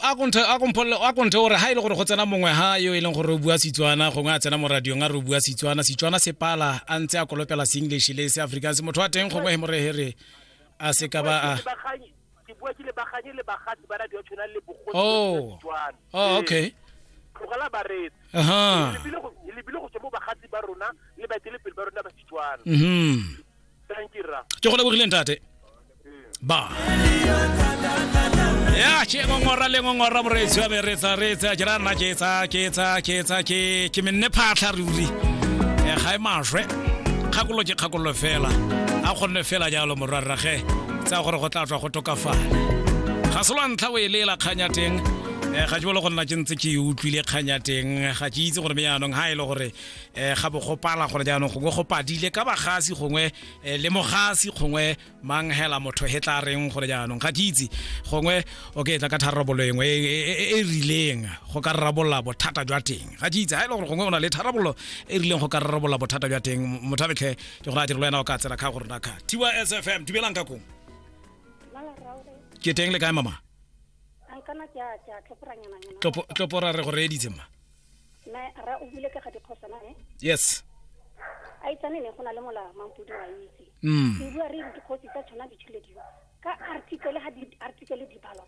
a konthe a kompole a konthe gore ha ile e gore go tsena mongwe ha yo e leng gore o bua Setswana gongwe a tsena mo radiong a re o bua Setswana Setswana se pala a ntse a kolopela se English le se Afrikaans motho wa teng gongwe he mo rehere a se ka ba a ke bua ke le baganye le bagatsi ba radio tshwana le bogosi oh oh okay tlogela ba re aha le bile go le bile go tswa mo bagatsi ba rona le ba tele pele ba rona ba Setswana mhm Thank you, Ra. ke go lebogileng tate ba ya ke ngongora le ngongora moreetsi wa meretsa reetsa ke ra nna ke etsa ke etsa ke etsa ke ke menne phatlha ruri Eh, ga e maswe kgakololo ke kgakololo fela a kgonne fela jalo morwarrage tsa gore go tla tswa go tokafala ga se lwa ntlha o e leela kgang ya teng Eh, ga ke bole go nna ke ntse ke e utlwile kgang ya teng ga ke itse gore me yaanong ga e le gore eh ga bo gopala gore jaanong gongwe go padile ka bagasi gongwe eh, le mogasi gongwe mang hela motho he tla reng gore jaanong ga ke itse gongwe o ke tla ka tharabolo engwe e, e, e, e rileng go ka rarabolola bothata jwa teng ga ke itse ga e le gore gongwe o na le tharabolo e rileng go ka rarabolola bothata jwa teng mothabetlhe ke gore a direlo wena o ka tsela ka gore na ka tiwa sfm dumelang ka kong ke teng le kae mama tloporare go reeditse ma na ra o bule ka ga dikgosana ne yes a itsane ne go na le mola mampudi wa itse mm. ke bua re re dikgosi tsa tshwana ditshile dilo ka article ga di-article di balwa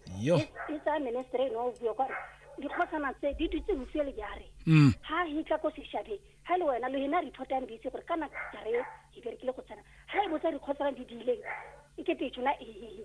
e tsaya ministry eno o bua kware dikgosana tse di dutse bofie le jare ga mm. e tla ko sešabeng ga e le wena lo ena re ithotang di itse gore kana jare e berekile go tsena ga e botsa dikgosana di diileng e kete e tshwana ee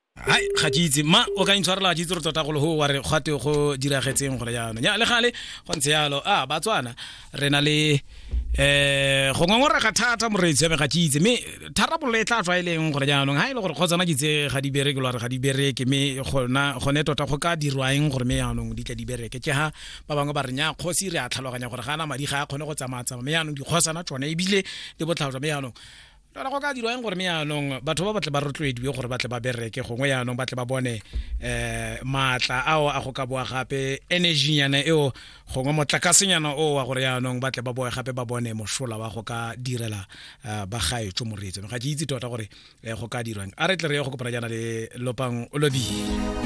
hai ga ke itse ma o ka intshwarela ga ke itse re tota golo go wa re gate go diragetseng gore jaanong ya le gale go ntse yalo a batswana re na le um go ngongorega thata moreetsi yame ga ke itse mme tharabololo e tla tswa e leng gore jaanong ga e le gore kgotsana ke tse ga di bereke lo re ga di bereke mme gona gone tota go ka dirwaeng gore mme jaanong di tla di bereke ke ga ba bangwe ba re nya kgosi re a tlhaloganya gore ga ana madi ga a kgone go tsamaya tsamaya mme jaanong dikgosana tsone ebile le botlhalo jwa mme jaanong fela go ka dirwa eng gore me yaanong batho ba batle ba rotloediwe gore batle ba bereke gongwe yaanong batle ba bone um maatla ao a go ka boa gape energynyana eo gongwe motlakasenyana o wa gore yaanong batle ba boe gape ba bone mosola wa go ka direla um ba gaetso moreetseno ga ke itse tota gore um go ka dirwang a re tle re ye go kopana jaana le lopang o lobile